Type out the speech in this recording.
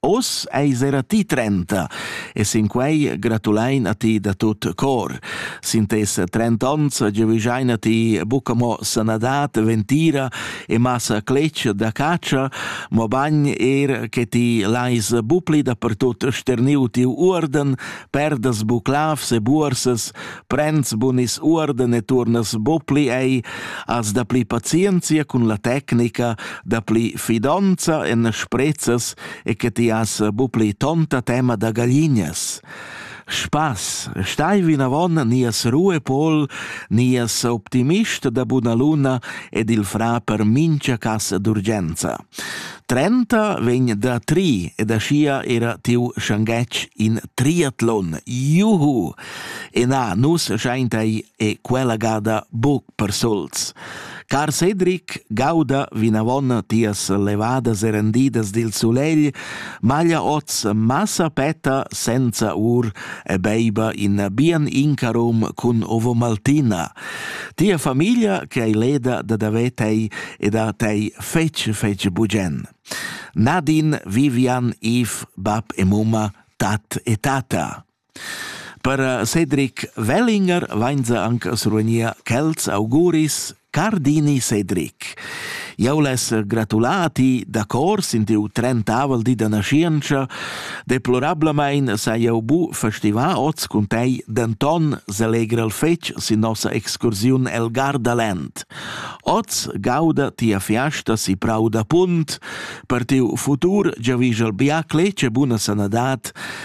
Oz eis era ti trenta e sin quei gratulein a ti da tut cor. Sin tes trent'onns giavischein a ti buca mo sanadad, ventira e massa cletg da catscha, mobein er che ti leis bu pli dapertut sterniu tiu uorden, perdas bu clavs e buorsas, prends bunis uorden e turnas bo pli ei as da pli pazienzia cun la tecnica da pli fidonza en sprezzas e che ti has bu pli tonta tema da gaglinas Spaß, stai vinavon nias Ruhe Pol, nias optimist da buna luna ed il fra per mincha casa d'urgenza. Trenta vegn da tri ed aschia era tiu schanghetg in triatlon. Juhu! E na, nus schaintei e quella gada buc per sols. Car Cedric, gauda vinavon tias levadas e rendidas dil sulegl, maglia oz massa petta senza ur e beiba in bien incarum cun ovo maltina. Tia famiglia che hai leda da davetei e da tei fetg fetg bugen. Nadine, Vivian, Yves, bab e mumma, tat e tata. Per eh, Cedric Wellinger vainza anc survegnir quels auguris Cardini Cedric. Jau les gratulati da cor sin tiu trentavel di da nascienza. Deplorablamain sa jau bu festivar oz cun tei denton selegre el fetg sin nossa excursiun el Gardaland. Oz gauda tia fiasta si prau da punt per tiu futur giavischel biacle ce buna sanadad